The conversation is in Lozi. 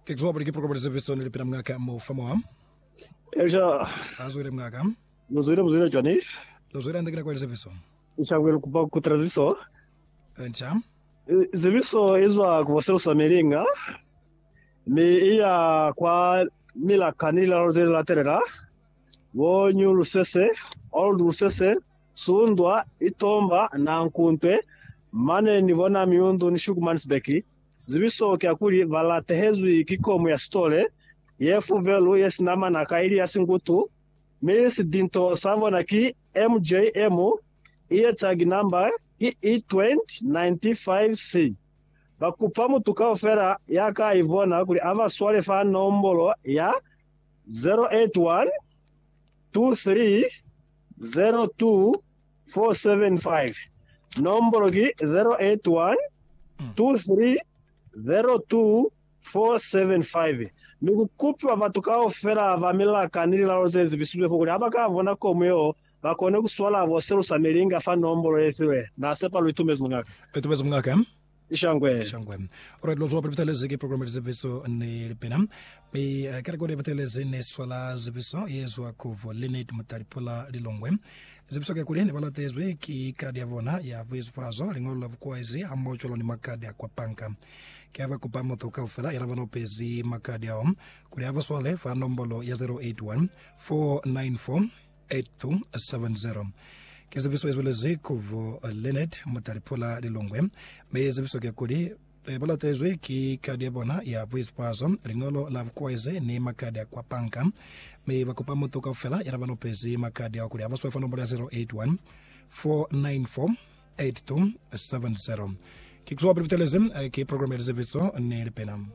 Kekzwa buli ki program le zeviso ni lipina mngaka mo fa moa. Elisha. A zwile mngaka. Lo zwile mu zwile cwani? Lo zwile ande ki nako ya lizeviso. Nshangwe lu kupa kutela zeviso. Ncha. Zeviso izwa ku bo selusa milinga mi iya kwa milaka ni lilalo ze latelela, bo New Lusese, Old Lusese, Sundwa, Itomba, Nankuntwe, mane ni bona Miundu ni Shukumansbeki. Zibiso ki ya kuli, ba latehezwi ki komu ya sitole, ye fuvelu, ye sina manaka, ili ya singutu, mi sidinto sa bona ki MJM, iye tag number ki E2095C. Ba kupa mutu kaufela ya ka i bona kuli a ba swale fa nombolo ya 081 23 02 475. Nombolo ki 081 2302 475 mi ku kupiwa batu kaufela ba milaka ni lilalo ze zibisizwe fo kuli ha ba ka bona komu yeo ba kone ku swala bo selusa milinga fa nombolo ye filwe. Na sepa lu itumezi, Muñaka. Lu itumezi, Muñaka. Shangwe. Shangwe. Alright, lwa zwa pele butelezi ki program ya lizepiso ni lipina. Mi uh, ke rekodi ya butelezi ne swala zepiso ye zwa ku vo Lynette Mutalipula Lilongwe. Zepiso ke kuli ne ba latezwi ki kadi ya bona ya buizufazo, liñolo la bukwaezi hamoho cwalo ni makadi a kwa panka. Ke ha ba kupa mutu kaufela ya na ba nopezi makadi ao kuli a ba swale fa nombolo ya 081 494 8270 Ki zibiso ye zwelezi ku bo Leonard Mutalipula Lilongwe, mi zibiso ke kuli ba latezwi ki kadi ya bona ya buiswazo, liñolo la bukoezi ni makadi a kwa panka, mi ba kupa mutu kaufela ya na ba lopezi makadi ao kuli a buswe fa nomolo ya 081 494 8270. Ki kuzwa pili butelezi ki programa ya lizibiso ni lipina.